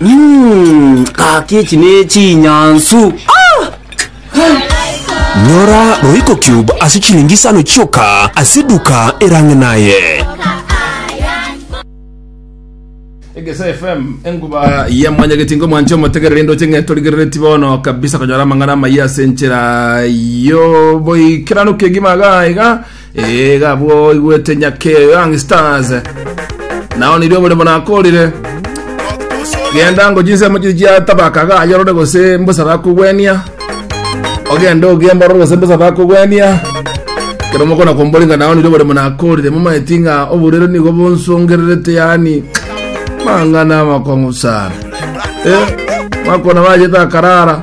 Mm, kaki echi nechinyansu Nyora Royco Cube ase chilingi isano chioka ase eduka erang'e naye. Egesa FM enkuba ya mwanyageti ngo mwanche omotegerere indoche ng'e torigerereti bono kabisa konyora amang'ana amaya ase enchera yo boikeranu kegima iga iga Ee, iga abwo oigwete nyake Young Stars. Nao nirio oboremo nakorire. Genda ngo chinsemo chiri chiatabaka gayorore gose mbosa bakogwenia. Ogende ogiemborore gose mbosa bakogwenia. Kero mokona komboringa nao nirio oboremo nakorire. Momaeti ng'a oborero nigo bonsongererete yani mang'ana amakong'u sana. Eh, makona bajete akarara.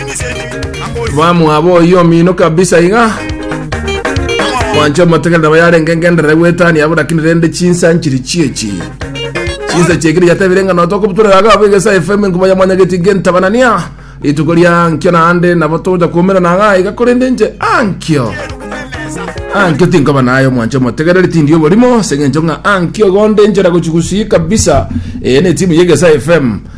Mwamwaba oyio omino kabisa iga. Mwancho motegere nabo yarenge ngenderere gwetania abo lakini rende chinsa nchiri chiechi. Chinsa chiekire yatebire ng'a notoka obuturera aga abo egesa FM nkuba ya mwanyageti gentabanania. Rituko ria nkio naende nabo toja kumera na aga iga korende nche ankio. Ankio tinkoba nayo mwancho motegereri tindi oborimo sengencho ng'a ankio gonde nchera gochigusi kabisa. Eh ne timu yegesa FM.